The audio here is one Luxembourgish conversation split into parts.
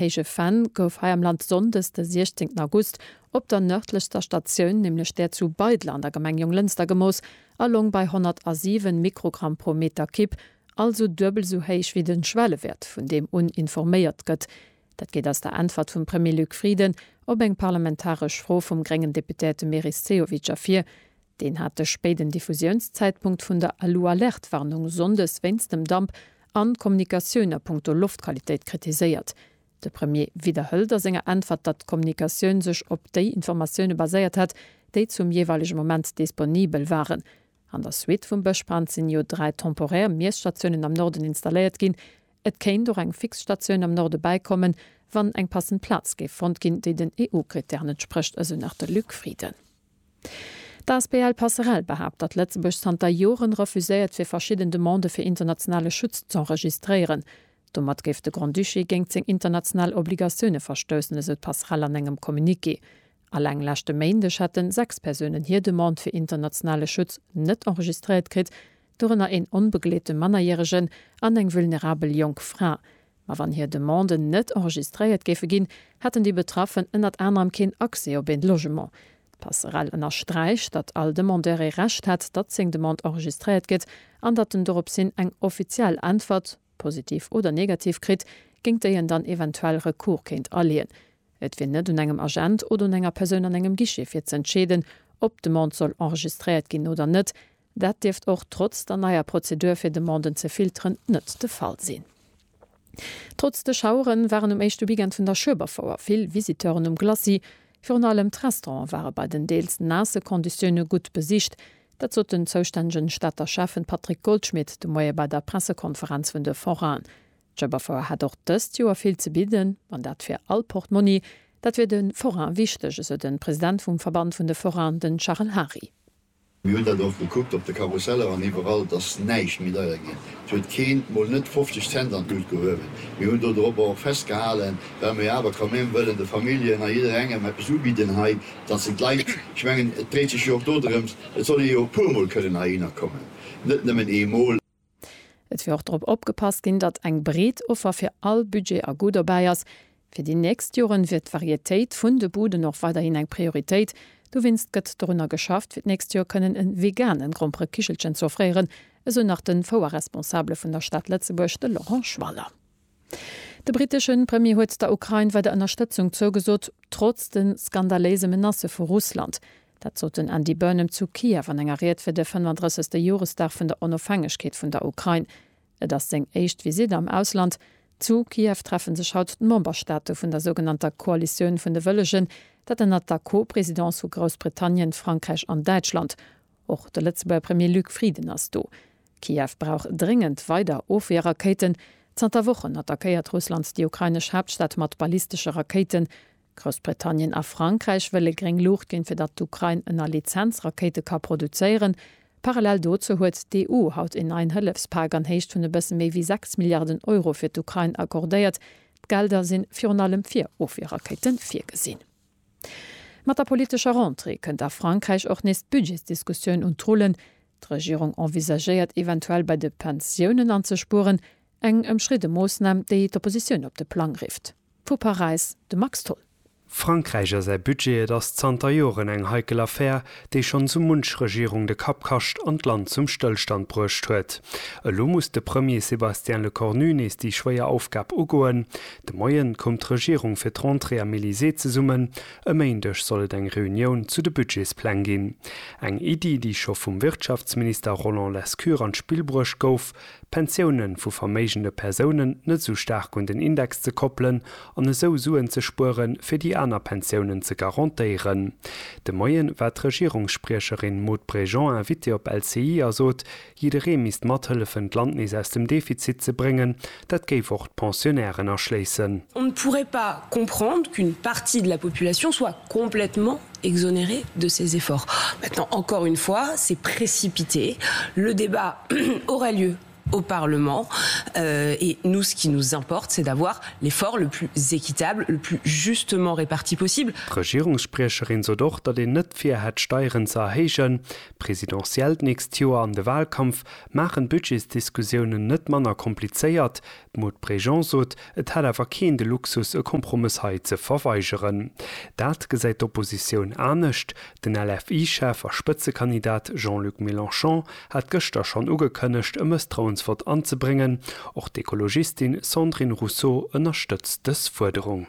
Héije Venn gouf hei am Land sonndes de 16 August op der nërdlechster Statioun, nämlech där zu Beidel an der Gemeng Jonglënster gemooss a loung bei 107 Mikrogramm pro Meter Kib, also duebel esou héich wéi de Schwellewäert vun deem un informéiert gëtt. Dat geet aus der Äntwert vum Premier Luc Frieden op eng parlamentaresch Fro vum gréngen Deputéierte Meris Sehovic ervir. Deen hat de spéiden Diffusiounszäitpunkt vun der Alu-Alerte-Warnung sonndes wéinst dem Damp an d'Kommunikatioun a punkto Loftqualitéit kritiséiert. De Premier widderhëlt a senger Äntwert, datt d'Kommunikatioun sech op déi Informatioune baséiert hätt, déi zum jeeweilege Moment disponibel waren. An der Suite vum Bëschbrand sinn jo dräi temporär Miesstatiounen am Norden installéiert ginn. Et kéint och eng fix Statioun am Norde bäikommen, wann eng passend Plaz géif fonnt ginn, déi den EU-Krittären entsprécht, esou nach de Luc Frieden. D'asbl Passerell behaapt, datt Lëtzebuerg zanter Joren refuséiert fir verschidden Demandë fir internationale Schutz z'enregistréieren. Domat géif de Grand-Duché géingt seng international Obligatioune verstoussen, esou d'Passerell an engem Communiqué. Alleng leschte Méindeg hätten 6 Persounen hir Demande fir internationale Schutz net enregistréiert kritt, dorënner een onbegleete Mannerjäregen an eng vulnerabel jonk Fra. Ma wann hir Demanden net enregistréiert géife ginn, hätten déi Betraffen ënnert anerem keen Accès op een Logement. D'Passerell ënnersträicht, datt all Demandeur ee Recht hätt, datt seng Demande enregistréiert gëtt an datt en doropshin eng offiziell Äntwert, positiv oder negativ, kritt, géint déi en dann eventuell Recours kéint aleeën. Et wier net un engem Agent oder un enger Persoun an engem Guichet fir ze entscheeden, ob d'Demande soll enregistréiert ginn oder net, Dat dierft och trotz der neier Prozedur fir Demanden ze filteren net de Fall sinn. Trotz de Schauere waren um éischte Weekend vun der Schueberfouer vill Visiteuren um Glacis. Virun allem d'Restauranten ware bei den deels naasse Konditioune gutt besicht. Dat sot den zoustännegen Stater Schäffen Patrick Goldschmidt de Moie bei der Pressekonferenz vun de Forainen. D'Schueberfouer hätt och dëst Joer vill ze bidden, an dat fir all Portmonni. Dat wier de Forainen wichteg, esou de President vum Verband vun de Forainen, den Charel Hary. Mir hunn dat och gekuckt op de Karusseller an iwwerall, dass näischt méi deier ginn. Et huet keen, mol net 50 Cent an d'Lut gehuewen. Mir hunn do dorobber och festgehalen, well mer jo awer quand même wëllen de Familljen a jidderengem eppes ubidden hei, dass se d'Leit, ech mengen et dréit sech jo och dodrëms, et soll ee jo e puermol kënnen heihinner kommen, net nëmmen eemol. Et wier och drop opgepasst ginn, datt eng breet Offer fir all Budget a Goût dobäi ass. Fir déi nächst Joren wier d'Varietéit vun de Buden och weiderhin eng Prioritéit. Dowéinst gëtt dorunner geschafft, fir d'nächst Joer kënnen e vegane Gromperekichelchen ze offréieren, esou nach de Fouerresponsabele vun der Stad Lëtzebuerg, de Laurent Schwaller. De britesche Premier huet der Ukrain weider Ënnerstëtzung zougesot, trotz de skandaléise Menacë vu Russland. Dat sot den Andy Burnham zu Kiew an enger Ried fir de 35. Joresdag vun der Onofhängegkeet vun der Ukrain. Et ass seng éischt Visitt am Ausland. Zu Kiew treffe sech haut d'Memberstaate vun der sougenannter Koalitioun vun de Wëllegen, dat ënnert der Co-Presidence vu Groussbritannien, Frankräich an Däitschland. Och de Lëtzebuerger Premier Luc Frieden ass do. Kiew brauch dréngend weider Ofwierrakéiten. Zanter Wochen attackéiert Russland déi ukrainesch Haaptstad mat ballistesche Rakéiten. Groussbritannien a Frankräich wëlle gréng Luucht ginn, fir datt d'Ukrain ënner Lizenz Rakéite ka produzéieren. Parallel dozou huet d'EU haut een neien Hëllefspak an Héicht vun e bësse méi wéi 6 Milliarden Euro fir d'Ukrain accordéiert. D'Gelder si virun allem fir Ofwierrakéite virgesinn. Mat der politescher Rentrée kënnt a Frankräich och nees d'Budgetsdiskussioun un d'Rullen. D'Regierung envisagéiert eventuell bei de Pensiounen anzespueren, eng ëmstridde Moossnam, déi d'Oppositioun op de Plang rifft. Vu Paräis de Max Tholl. Frankräich a säi Budget, Et ass zanter Joren eng heikel Affär, déi schonn sou munch Regierung de Kapp kascht an d'Land zum Stëllstand bruecht huet. Elo muss de Premier Sébastien Lecornu nees déi schwéier Aufgab ugoen. De Moien koum d'Regierung fir d'Rentrée am Elysée zesummen. E Méindeg soll et eng Reunioun zu de Budgetspläng ginn. Eng Iddi, déi scho vum Wirtschaftsminister Roland Lescure an d'Spill bruecht gouf, D'Pensioune vu verméigende Persounen net esou staark un den Index ze koppelen an esou Suen ze spuere fir déi aner Pensiounen ze garantéieren. De Moien war d'Regierungsspriecherin Maud Bregeon Invitée op LCI a sot, jidderee misst mathëllefen d'Land nees aus dem Defizit ze bréngen, dat géif och d'Pensionnairen aschléissen. On ne pourrait pas comprendre qu'une partie de la population soit complètement exonéré de ses efforts. Maintenant, encore une fois, c'est précipité. Le débat aurait lieu au Parlement et nous, ce qui nous importe, c'est d'avoir l'effort le plus équitable, le plus justement réparti possible. D'Regierungsspriecherin sot och, datt een net vir hätt, Steieren ze erhéijen. D'Presidentielle d'nächst Joer an de Wahlkampf maachen d'Budgetsdiskussiounen net manner komplizéiert. D'Maud Bregeon sot, et hätt awer keen de Luxus e Kompromëss hei ze verweigeren. Dat gesäit d'Oppositioun anescht. Den LFI-Chef a Spëtzekandidat Jean-Luc Mélenchon hat gëschter schonn ugekënnegt e Mësstrauensvott anzebréngen. Och d'Ekologistin Sandrine Rousseau ënnerstëtzt dës Fuerderung.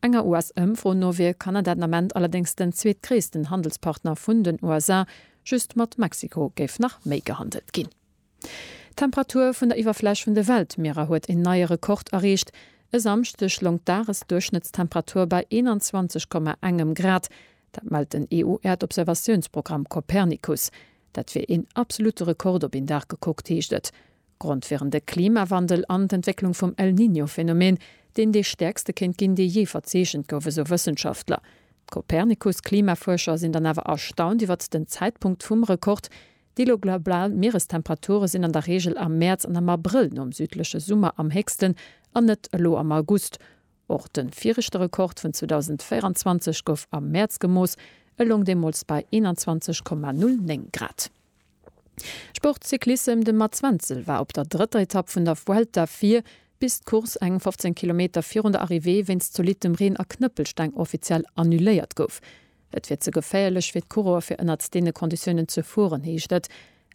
Enger US-Ëmfro no wier Kanada den Ament allerdéngs den zweetgréissten Handelspartner vun den USA, just mat Mexiko géif nach méi gehandelt ginn. D'Temperatur vun der Iwwerfläch vun de Weltmierer huet een neie Rekord erreecht. E Samschdeg loung d'Dagesduerchschnëttstemperatur bei 21 Komma engem Grad. Dat mellt den EU-Äerdobservatiounsprogramm Copernicus. Dat wier een absolutte Rekord op een Dag gekuckt, heescht et. Grond wieren de Klimawandel an d'Entwécklung vum El Niño Phänomen, deen dee stäerkste kéint ginn, dee jee verzeechent gouf, esou Wëssenschaftler. D'Copernicus Klimafuerscher sinn dann awer erstaunt iwwert den Zäitpunkt vum Rekord, Déi elo global Mierestemperature sinn an der Reegel am Mäerz an am Abrëll nom südleche Summer am héchsten, an net elo am August. Och de viregte Rekord vun 2024 gouf am Mäerz gemooss, e loung deemools bei 21,09 Grad. Sport Cyclissem De Mats Wenzel war op der drëtter Etapp vun der Vuelta vir, bis d'Course eng 15 Kilometer virun der Arrivée wéinst zolittem Reen a Knëppelsteng offiziell annuléiert gouf. Et wier ze geféierlech fir d'Coureuer fir ënnert deene Konditiounen ze fueren, heescht et.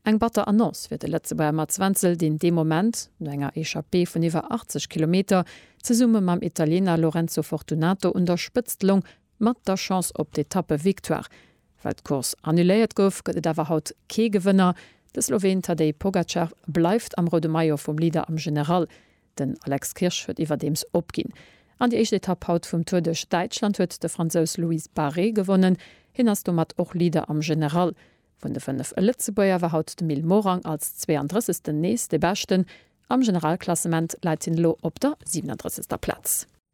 Eng batter Annonce fir de Lëtzebuerger Mats Wenzel, deen dee Moment, no enger Echappée vun iwwer 80 Kilometer, zesumme mam Italiener Lorenzo Fortunato un der Spëtzt loung, Mat der Chance op d'Etappe-Victoire. Well d'Course annuléiert gouf, gëtt et awer haut kee Gewënner. De Sloween Tadej Pogacar bleift am roude Maillot vum Leader am General. Den Alex Kirsch huet iwwerdeems opginn. An déi éischt Etapp haut vum Tour duerch Däitschland huet de Fransous Louis Barret gewonnen. Hien ass domat och Leader am General. Vun de fënnef Lëtzebuerger war haut de Mil Morang als 32 den nees de beschten. Am Generalklassement läit hien elo op der 37. Plaz.